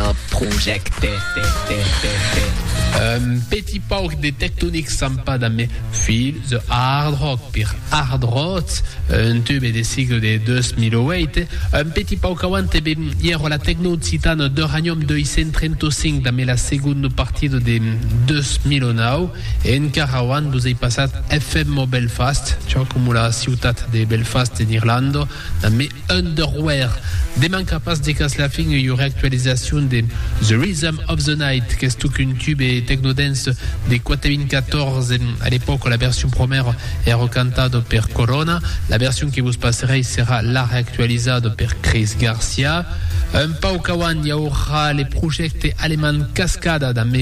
Ò projècte. Un petit pauc de tectonic sampat a mes filhs de hard rock per hard rock, un tube de sigle de 2008, un petit pauc auant e ben ièro la tecno occitana d'Uranium 235 da me la segonda partida de 2009 e encara auant vos ei passat FM Belfast, çò coma la ciutat de Belfast en Irlanda, Damb Underwear, deman qu'a pas de cas la fin, ei ora actualizacion de The Rhythm of the Night, qu'es totque un tube techno-dance de 2014. A l'epòca, la version promèra èra cantada per Corona, la version que vos passerèi serà la reactualizada per Chris Garcia. Un pauc auant i aurà le projècte alemand Cascada damb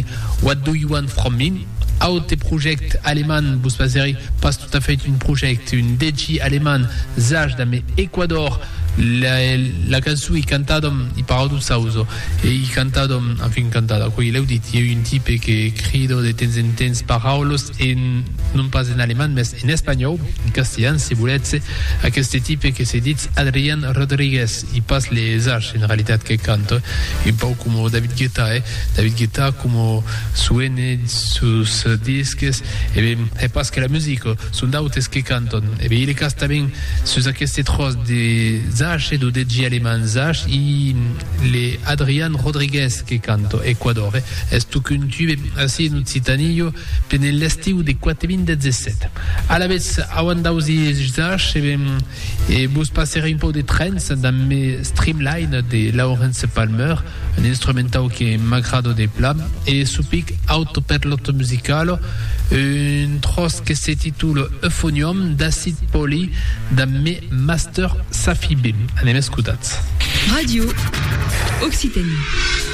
What Do You Want From Me? Aute projècte alemand, vos pasèri pas tot a fait un projècte, un dètgi alemand, zach damb Equador, la cançon i cantadam i Paradoxauzo, e i cantadam, enfin cantada, coi l'èu dit, ieu un tipe que crido de temps en temps paraules en, non pas en alemand, mès en espanhòu, en castilhan, se volètz, aqueste tipe que se ditz Adrian Rodriguez, i pas le zach en realitat que canta, un pauc coma David Guetta, eh? David Guetta coma. Suene sus disques, e ben, hè pas que la musica, son d'autes que cantan. E ben, i le cas tanben sus aqueste tròç de Zach, lo DJ alemand Zach, i le Adrian Rodriguez que canta, Ecuador, hè, es tocuntu, ben, ací en Occitània, jo pene l'estiu de 4017. Alavetz, auant d'ausi Zach, e ben, e vos passerè un pauc de trance damb me Streamline de Lawrence Palmer, Un instrumentau que m'agrado de plan e su pic auto per l'otto musicalo, un tròç que se titula Euphonium d'Acid Poly damb me master Safi Bim. Anem escotats. Radio Occitanie.